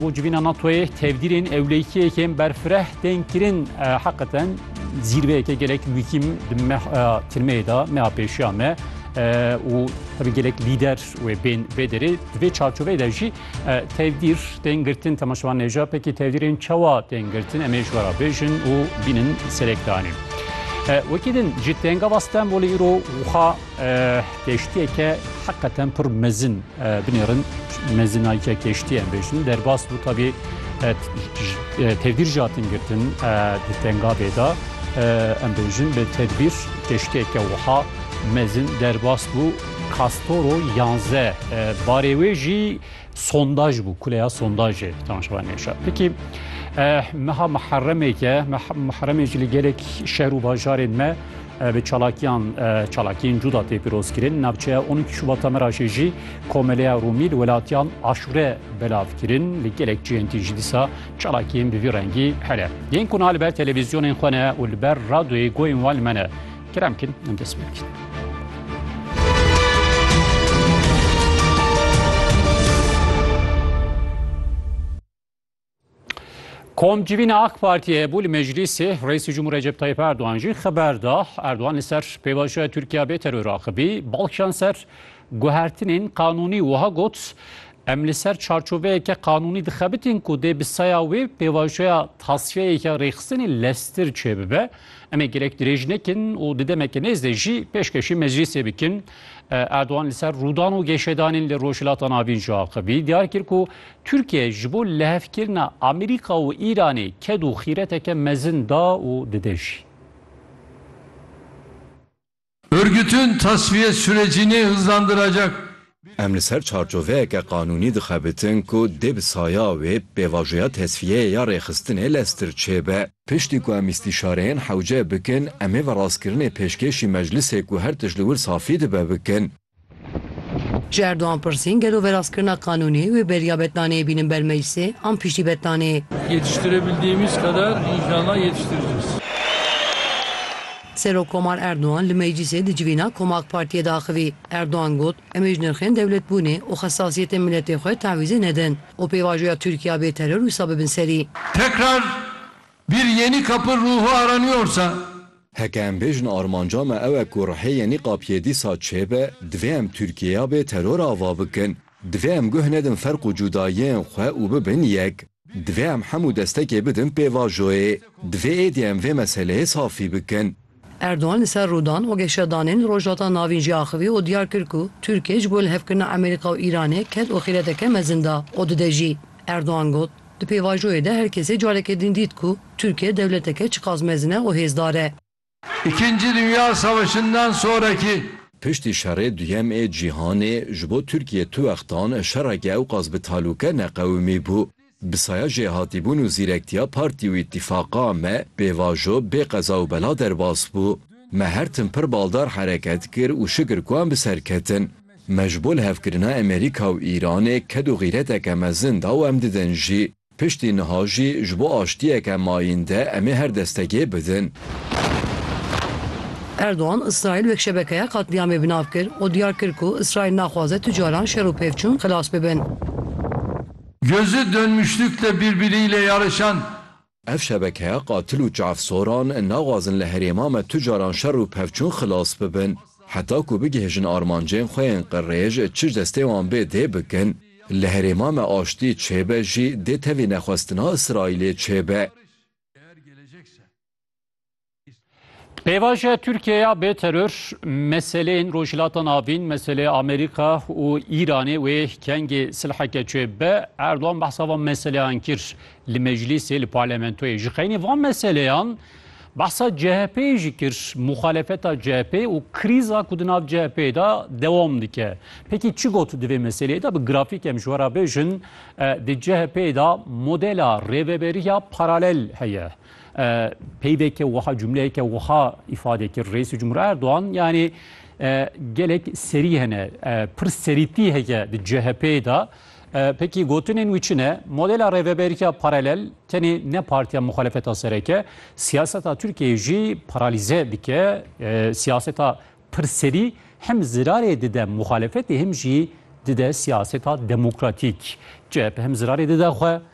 Bo civîna NATO'yê tevdîrên ewlêkiyekên berfireh tên kirin heqeten zîrveyeke gelek mûkim di meha tirmeyê de meha pêşiya me û tabi gelek lîder wê bên vê derê di vê çarçoveyê de jî tevdîr tên girtin temaşevan nêja pekî tevdîrên çawa tên girtin em ê ji vera bêjin û bînin serekdanîn. Wekî din ji tengava Stenbolê îro wiha Keştiyeke heqeten pir mezin binêrin mezinayike keştiye em bêjin derbas bû tabî tevdîr jatin girtin di tengavê da em bêjin bi tedbîr keştiyeke wiha mezin derbas bû kastoro yanze barê wê jî sondaj bû kuleya sondajê temaşewa nêşa pekî meha miheremêke miheremê jî li gelek şer û bajarên me bi çalakiyan çalakiyên cuda tê pirozkirin navçeya 12 Şubat Meraşê jî komeleya Rûmî li welatiyan aşure belav kirin li gelek cihên tî jî dîsa çalakiyên bi vî rengî here yên ku na li ber televîzyonên xwe ne û li ber radyoyê goyên wan li me ne Kerem kin, em dest pê dikin. Komcivîn AK Partiye bû li meclîsê Reîsî Cumhur Recep Tayyip Erdoğan jî xeber da Erdoğan li ser pêvajoya Tirkiya bê teror axivî balkişan ser guhertinên qanûnî wiha got em li ser çarçoveyeke qanûnî dixebitin ku dê bi saya wê pêvajoya tasiyeyeke rêxistinê lestir çêbibe. Em ê gerek dirêj nekin û di demeke nêz de jî pêşkêşî meclîsê bikin. Erdogan li ser rûdan û gêşedanên li Rojhilata Navîn jî axivî. Diyar kir ku Tirkiye ji bo lihevkirina Amerîka û Îranê ked û xîreteke mezin da û dide jî. Örgütün tasfiye sürecini hızlandıracak bir. Em li ser çarçoveyeke qanûnî dixebitin ku dê bi saya wê pêvajoya tesfiyeyê ya rêxistinê leztir çêbe. Piştî ku em îstîşareyên hewce bikin, em ê verastkirinê pêşkêşî meclisê ku her tişt li wir safî dibe bikin. Ji Erdogan pirsîn gelo veraskirina qanûnê wê beriya betlaneyê bînin ber meclisê an piştî betlaneyê? Yetiştirebildiğimiz kadar inşallah yetiştireceğiz. Serokkomar Erdogan li meclisê di civîna Koma AK Partiyê de axivî. Erdogan got, Em ê ji nirxên dewletbûnê û xesasiyetên miletê xwe tewîzê nedin û pêvajoya Tirkiya bê teror wisa bibin serî. Tekrar bir yeni kapı ruhu aranıyorsa Heke em bêjin armanca me ew e ku rihêyê nîqab yê dîsa çêbe, divê em Tirkîyeya bê teror ava bikin. Divê em guh nedin ferq û cudayiyên xwe û bibin yek. Divê em hemû destekê bidin pêvajoyê. Divê êdî em vê meseleyê safî bikin. Erdogan li ser rûdan û geşedanên Rojhilata Navîn jî axivî û diyar kir ku Tirkiye ji bo lihevkirina Amerîka û Îranê ket û xîreteke mezin da û dide jî. Erdogan got, Di pêvajoyê de her kesê careke din dît ku Tirkiye dewleteke çiqas mezin e û hêzdar e. Îkincî Dinya Savaşinden sorekî. Piştî Şerê Duyem ê Cîhanê ji bo Tirkiye tu wextan şereke ewqas bi talûke neqewimî bû. Bi saya jêhatîbûn û zîrektiya partî û îtîfaqa me pêvajo bê qeza û bela derbas bû. Me her tim pir baldar hereket kir û şikir ku em bi ser ketin. Me ji bo lihevkirina Emerîka û Îranê ked û xîreteke mezin da û em didin jî. Piştî niha jî ji bo aştiyeke mayînde em ê her destekê bidin. Erdogan Îsraîl wek şebekeya qetlîamê bi nav kir û diyar kir ku Îsraîl naxwaze tu caran şer û pêvçûn xilas bibin. Gözü dönmüşlükle birbiriyle yarışan Ev şebekeya qatil û çavsoran naxwazin li herêma me tu caran şer û pevçûn xilas bibin. Heta ku bigihêjin armancên xwe yên qirêj çi ji destê wan bê dê bikin. Li herêma me aştî çêbe jî dê tevî nexwestina Îsraîlê çêbe. Pêvajoya Tirkiye ya bê teror meseleyên Rojhilata Navîn, meselê Amerîka û Îranê wê kengê silheke çê be, Erdogan behsa van meseleyan kir li meclîsê li parlamentoyê. Ji xeynî van meseleyan behsa CHP'yê jî kir, muxalefeta CHP û krîza ku di nav CHP'yê de dewam dike. Pekî çi got di vê meseleyê de bi grafîk em ji we re bêjin, di CHP'yê de modela rêveberiya paralel heye. Peyveke wiha cumleyeke wiha îfade kir Reîsê Cumhur Erdogan yanê gelek serî hene pir serîtî heye di CHP'ê de pekî gotinên wî çi ne? Modela rêveberîya paralel tenê ne partiya muxalefeta sereke siyaseta Tirkiyeyê jî paralîze dike siyaseta pir serî hem zirarê dide muxalefetê hem jî dide siyaseta demokratîk. CHP hem zirarê dide xwe